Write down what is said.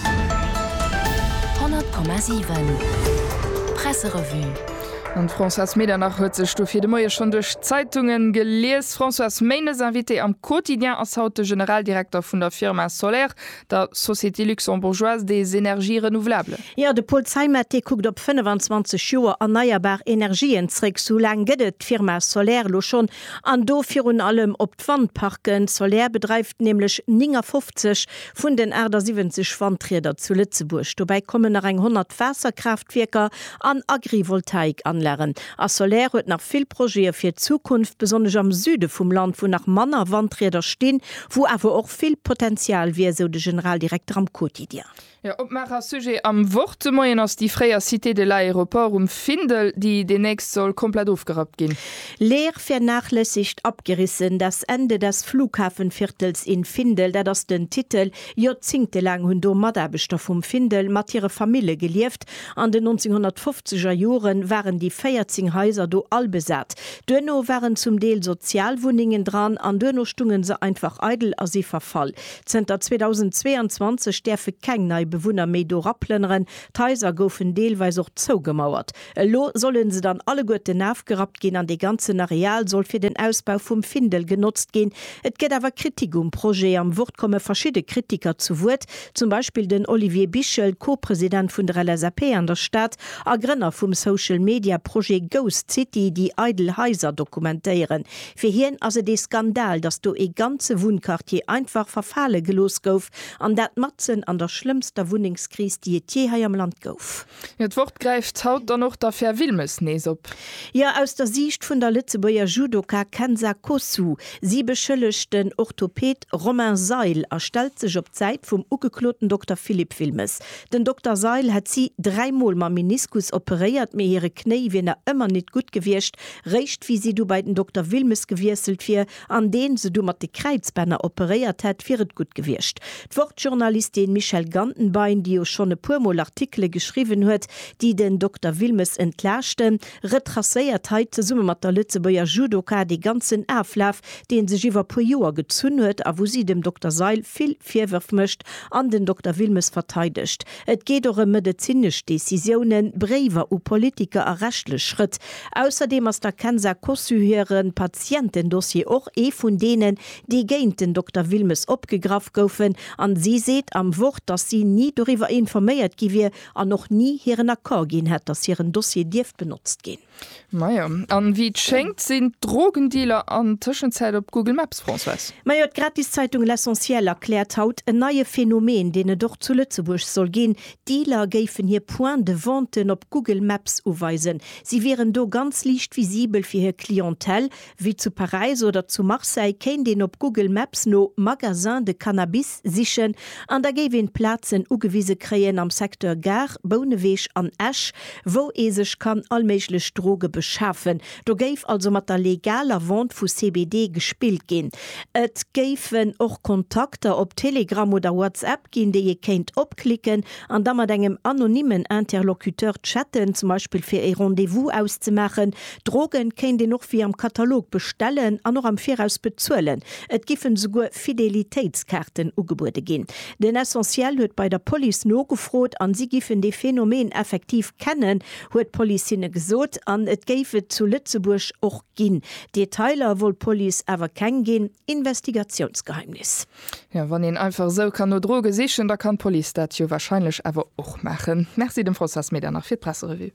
100,7 Presserevue. An d'Françoise Medernach huet sech dofir de Moie schonn duerch d'Zeitunge gelies. Françoise, Méindes Invité am Quotidien ass haut de Generaldirekter vun der Firma Soler, der Société Luxembourgeoise des Energies Renouvelables. Jo, de Paul Zeimet, dee kuckt op 25 Joer erneierbar Energien zréck, sou laang gëtt et d'Firma Soler elo schonn, an do virun allem op. D'Wandparken Soler bedreift nämlech 59 vun den 78 Wandrieder zu Lëtzebuerg. Dobäi kommen nach eng 100 Waasserkraaftwierker an Agrivoltaikanlagen. A Soler huet nach vill Projete fir d'Zukunft, besonnesch am Süde vum Land, wou nach manner Wandrieder stinn, wou awer och vill Potenzial wier, sou de Generaldirekter am Quotidien. Jo, Opmaacher a Sujet am Wort de Moien ass déi fréier Cité de l'Aéroport um Findel, déi deemnächst soll komplett ofgerappt ginn. Leer, vernachlässigt, abgerissen, das Ende des Flughafenviertels in Findel, dat ass den Titel. Joerzingte laang hunn do Mataarbechter vum Findel mat hire Famille gelieft. An den 1950 er Jore waren déi 14 Haiser do all besat. Duerno waren zum Deel Sozialwunnengen dran an duerno stungen se einfach eidel a si verfall. Zënter 2022 däerfe keng nei Bewunner méi do raplënneren. D'Haiser goufen deelweis och zougemauert. Elo solle se dann alleguerten afgerappt ginn an dee ganzen Areal soll fir den Ausbau vum Findel genotzt ginn. Et gëtt awer Kritik um Projet. Am Wort komme verschidde Kritiker zu Wuert, zum Beispill den Olivier Bichel, Co-President vun der LSAP an der Stad a Grënner vum Social-Media-Projet Ghost City, déi eidel Haiser dokumentéieren. Fir hien ass et ee Skandal, datt do ee ganze Wunnquartier einfach verfale gelooss gouf, an dat matzen an der schlëmmster Wunnengskris, déi et jee hei am Land gouf. Jo, d'Wort gräift haut dann och d'Affär Wilmes nees op. Jo, aus der Siicht vun der Lëtzebuerger Judoka Kenza Kosu. Si beschëllegt den Orthoped Romain Seil a stellt sech op d'Säit vum ugekloten Dokter Philippe Wilmes. Den Dokter Seil hätt si dräi Mol mam Meniskus operéiert, mee hire Knéi wier nach ëmmer nit gutt gewiescht, Réischt wéi si du bei den Dokter Wilmes gewiesselt wier, an deen se du mat de Kräizbänner operéiert hätt, wier et gutt gewiescht. D'Wort-Journalistin Michèle Gantenbein, déi jo schonn e puer Mol Artikele geschriwwen huet, déi den Dokter Wilmes entlaaschten, retracéiert hei zesumme mat der Lëtzebuerger Judoka dee ganzen Aflaf, dee sech iwwer puer Joer gezunn huet a wou si dem Dokter Seil vill Virwërf mécht an den Dokter Wilmes verteidegt. Et geet och ëm medezinesch Decisiounen, Bréiwer u Politiker a rechtlech Schrëtt. Ausserdeem ass der Kenza Kossu hire Patientendossier och ee vun deenen, déi géint den Dokter Wilmes opgegraff goufen an si seet am Wort, datt si ni doriwwer informéiert gi wier an och ni hiren Accord ginn hätt, datt hiren Dossier dierft benotzt ginn. Majo, an wéi et schéngt sinn d'Drogendealer an Tëschenzäit op Google Maps, Françoise. Majo, d'Gratiszeitung L'Essentiel erkläert haut en neie Phänomen, deen et och zu Lëtzebuerg soll ginn, Dealer géifen hir Points de venten op Google Maps uweisen. Si wieren do ganz liicht visibel fir hir Clientèle, Wéi zu Paräis oder zu Marseille kéint een op Google Maps no Magasins de Cannabis sichen an da géif een d'Plazen ugewise kréien am Secteur Gare, Bouneweg an Esch, wou ee sech kann all méiglech Droge beschafen. Do géif also mat der legaler Vente vu CBD gespillt ginn. Et géifen och Kontakter op Telegram oder WhatsApp. App ginn, déi ee kéint opklicken an da mat engem anonymen Interlocuteur chatten, zum Beispill fir ee Rendez-vous auszemaachen. Droge kéint een och wéi am Katalog bestellen an och am Viraus bezuelen. Et giffen esouguer Fidelitéitskaarten ugebuede ginn. Den Essentiel huet bei der Police nogefrot an si giffen dee Phänomen effektiv kennen, huet d'Police hinne gesot. An et géif et zu Lëtzebuerg och ginn. Detailer wollt d'Police awer keng ginn, Investigatiounsgeheimnis. Jo, wann een einfach esou kann no Droge sichen, da kann d'Police dat jo wahrscheinlech awer och maachen. Merci dem François Smeeder nach fir d'Presserevue.